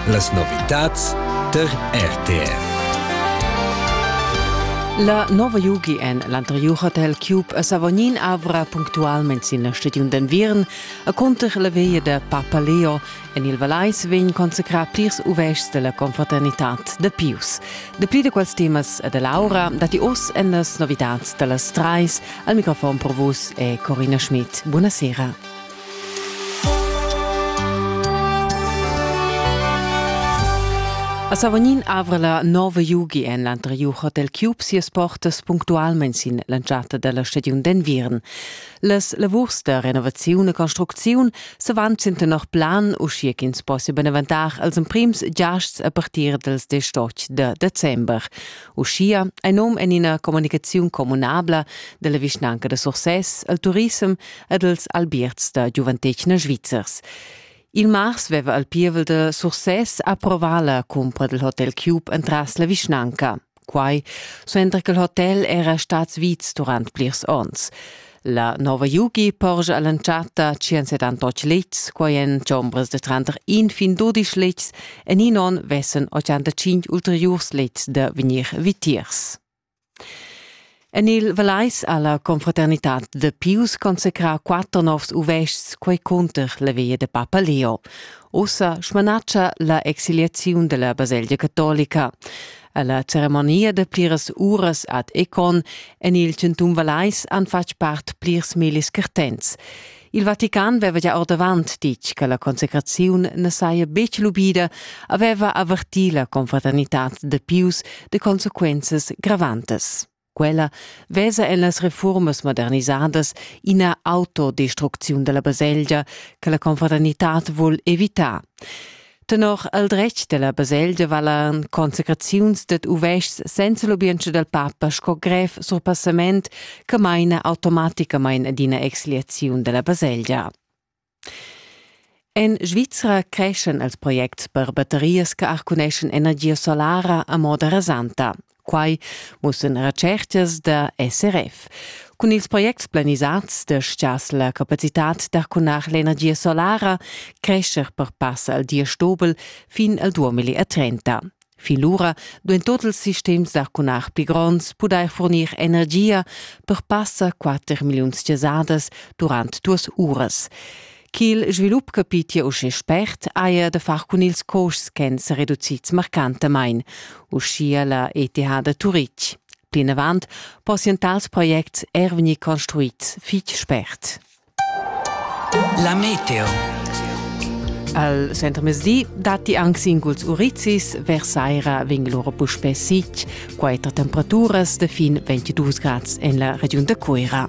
Las novitads tar RTR. La nova Yugi en l'anterior hotel Cube a Savognin avra punctualment sin la stagiun d'enviern a cunter la veia da Papa Leo. En il Valais vegn consacrà plirs uvests della confraternitad da Pius. Dapli da quels temas e dell'aura datti oz en las novitads da las trais. Al microfon per vus è Corina Schmidt. Buonasera. A Savognin avra la nova Jugi en l'anteriur hotel Cube sias portas punctualmain sin l'entschatta della stagiun d'enviern. Las lavurs da renovaziun e construcziun se van sin tenor plan, uschia ch'ins possia beneventar als emprims giasts a partir dels 18 de december. Uschia ein num en ina comunicaziun communabla della vischnanca de Sursès al turisem ed els albierts da giuventetgna svizzers. Il mars veva el pievel de Sursès approvar la cumpra del hotel Cube entras la vischnanca. Quai suenter che il hotel era stats vits durant plirs onns. La nova Yugi porgia all'entschatta 178 letgs, quai en chombras de tranter in fin 12 letgs en in on vessen 85 ulteriurs letgs da vegnir vitiers. En il Vallais ha la confraternitad da Pius consacrà quatter novs uvestgs, quai cunter la via da papa Leo. Ussa smanatscha la exiliaziun della baselgia catolica. Alla ceremonia da pliras uras ad Econ en il centum Vallais han fatg part plirs millis cartents. Il Vatican veva gia ordavant ditg che la consecraziun ne saja betg lubida, aveva avertì la confraternitad de Pius de consequenzas gravantas. Quella vesa en las reformas modernisadas ina autodestrucziun della baselgia che la confraternitad vul evitar. Tenor el dretg della baselgia valan consecraziuns ded uvests senza lubientscha del papa sco grev surpassament che maina automaticamain ad ina exliaziun della baselgia. En Svizra creschen els projects per batterias che arcuneschan energia solara a moda rasanta. Quai mussan retschertgas da SRF. Cun ils projects planisads destias la capacitad d'arcunar l'energia solara crescher per pass al diesch dobel fin al 2030. Fin lura duin tot ils sistems d'arcunar pli gronds pudair fornir energia per passa 4 milliuns chasadas durant duas uras. Ch'il svilup capitia uschè spert haja da far cun ils costs ch'èn sa reducids marcantamain, uschia la ETH da Turitg. Plinavant possian tals projects er vegnir construids fitg spert. La meteo. Al Centrmezdi datti anc singuls urizis, versaira vegn lura puspè sitg, quatter temperaturas da fin 22 grads en la regiun da Cuira.